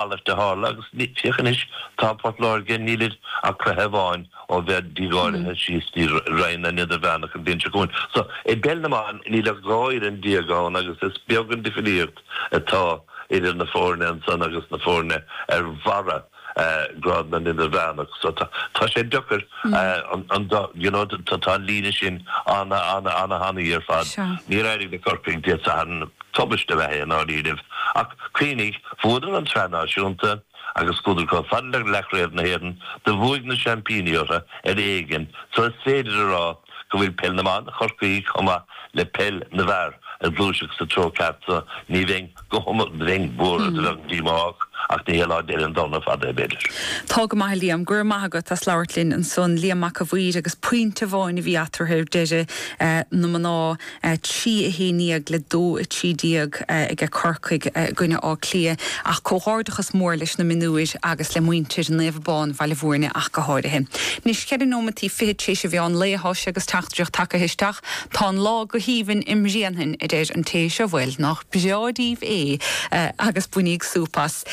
Mar a tharla agus féach anois tá Port Láirge níl ach cluiche amháin ó bheith dícáilithe síos dtí Roinn na nIdirmheánach an bhliain seo chugainn. So i bpeil na mban níl ach dhá fhoireann déag ann agus is beag an difríocht atá idir na foirne ansan agus na foirne ar bharra grád na nIdirmheánach. So tá sé deacair an dá, you know, tá an líne sin ana ana thanaí ar fad. Níor éirigh le Corcaigh Dé Sathairn. Tubaist ab ea é i ndáiríribh, ach cuimhnigh, bhuadar an tSraith Náisiúnta agus chuadar chomh fada le leathchraobh na hÉireann, do bhuaigh na seaimpíní orthu ar éigean, so is féidir a rá go bhfuil peil na mban Chorcaí chomh maith le peil na bhfear a' gluaiseacht sa treo ceart so ní bheinn go, bheinn buartha, do bheadh díomá ach, ach ní hé lá deiridh an domhain ar fad é, b'fhéidir. Tá go maith a Liam, go raibh maith agat as labhairt linn ansan, Liam Mac a' Mhaoir agus pointe amháin a bhí eatarthu ar deireadh, na mná. trí a haon déag le dó a trí déag aige Corcaigh i gcoinne Átha Cliath ach comhghairdeachas mór leis na mionúir agus le muintir Naomh Abán, Bhaile Mhúirne ach go háirithe. Anois cheithre nóimeataí fichead tar éis a mheán lae thá sé agus teachtaireacht tagaithe isteach, tá an lá go haoibhinn i mBréanainn a deir an té seo bhuel nach breá díbh é agus bainigí súp as.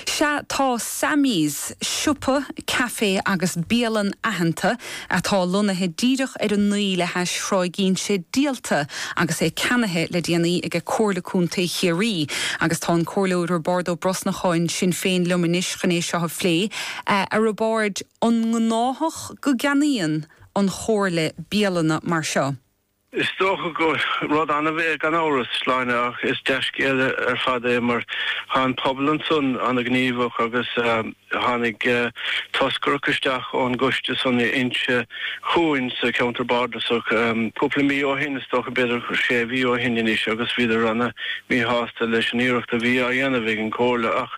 Sea tá Sammy's, siopa, café agus bialann aitheanta. atá lonnaithe díreach ar an ndroim le hais Thráigh Ínse díolta agus é ceannaithe le déanaí aige Comhairle Contae Chiarraí agus tá an Comhairleoir Roibeard Ó Brosnacháin Sinn Féin liom anois chun é seo a phlé. A Roibeáird, an gnáthach go gceannaíonn an Chomhairle bialanna mar seo? Is dócha gur rud annamh é gan amhras, a Shláine, ach is dea-scéal ar fad é mar thá an pobal ansan an-ghníomhach agus tháinig toscaireacht isteach ón gcoiste san Inse chugainn sa cheantar bardasach cúpla mí ó shin, is dócha b'fhéidir sé mhí ó shin anois, agus bhíodar ana mhíshásta leis an iarracht a bhí á dhéanamh ag an gComhairle ach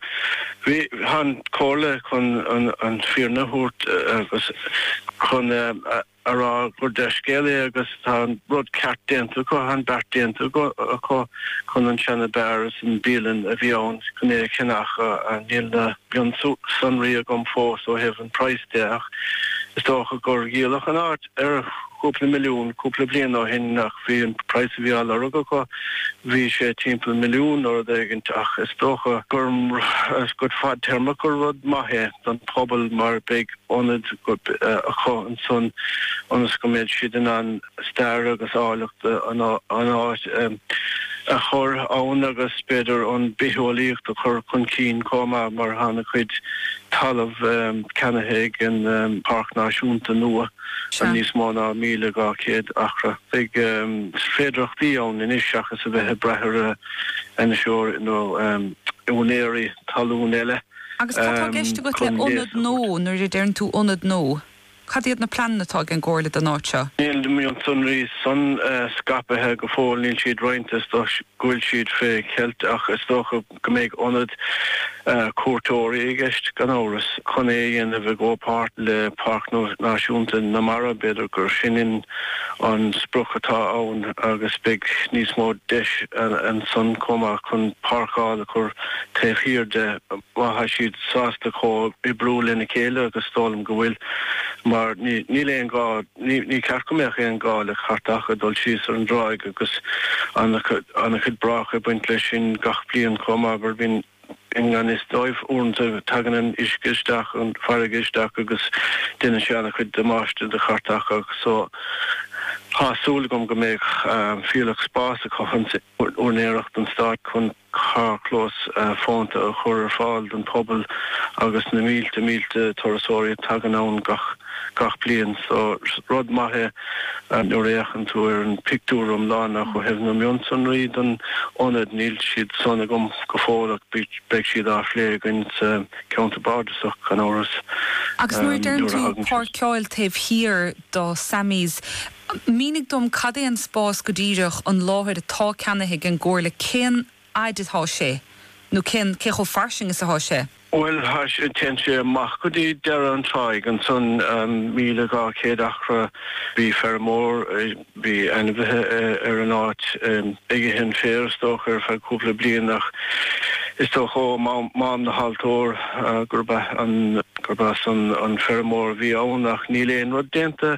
thá an Comhairle chun an fhírinne a thabhairt agus chun a a rá gur dea-scéal é agus tá an rud ceart déanta acu, tá an beart déanta acu chun an seana bheár is an bialann a bhí ann chun é a cheannach ach níl na mionsonraí agam fós ó thaobh an praghas de ach is dócha gur díoladh an áit ar chúpla milliún cúpla bliain ó shin ach bhí an praghas a bhí á lorg acu bhí sé timpeall milliún nó rud éigint ach is dócha gur rud fadtéarmach gur rud maith é don phobal mar beidh ionad acu ansan ionas go mbead siad in ann stair agus áilleacht an áit a chur ann agus b'fhéidir an bitheolaíocht a chur chun cinn chomh maith mar thá ana chuid talamh ceannaithe ag an páirc náisiúnta nua ar níos mó ná 1200 acra. Beidh féidireachtaí ann anois seachas a bheith ag braith ar fheirmeoirí nó úinéirí talún eile. Agus cad tá i gceist agat le ionad nua, nuair a deireann tú ionad nua, cad iad na pleananna atá ag an gComhairle don áit seo? Níl na mionsonraí san scaipithe go fóill, níl siad roinnte, is dócha go bhfuil siad fé cheilt ach is dócha go mbeidh ionad cuairteoirí i gceist, gan amhras, chun é a dhéanamh i gcomhpháirt le Páirc Náisiúnta na Mara, b'fhéidir gur sin an sprioc atá ann agus beidh níos mó deis ansan chomh maith chun páirceáil a chur Taobh thiar de, má tá siad sásta comhoibriú lena chéile, agus is dóigh liom go bhfuil, mar níl aon ghá, ní ceart go mbeadh aon ghá le cairteacha dul síos ar an dtráigh agus ana-chuid bráca ag baint leis sin gach bliain chomh maith mar bíonn i ngan fhios dóibh uaireanta tagann an uisce isteach an farraige isteach agus déanann sé ana-chuid damáiste do chairteacha so tá súil agam go mbeidh fuílleach spás acu san úinéireacht an stáit chun carrchlós fónta a chur ar fáil don phobal agus na mílte mílte turasóirí a tagann ann gach bliain. So rud maith é nuair a fhéachann tú ar an pictiúr iomlán. Ach ó thaobh na mionsonraí don ionad, níl siad san agam go fóill ach beidh siad á phlé againn sa Cheantar Bardasach gan amhras. Agus nuair a deireann tú páirceáil taobh thiar do Sammy's, Mínigh dom cad é an spás go díreach, an láthair atá ceannaithe ag an gComhairle, cén fhaid atá sé nó cén, cé chomh fairsing is atá sé? Bhuel, téann sé amach go dtí deireadh an tráigh ansan, míle dhá chéad acra. Bhí feirmeoir, bhí ainmhithe ar an áit, ag ithe an féir is dócha ar feadh cúpla bliain ach is dócha ó Mám na hAltóir gurb as an feirmeoir a bhí ann ach níl aon rud déanta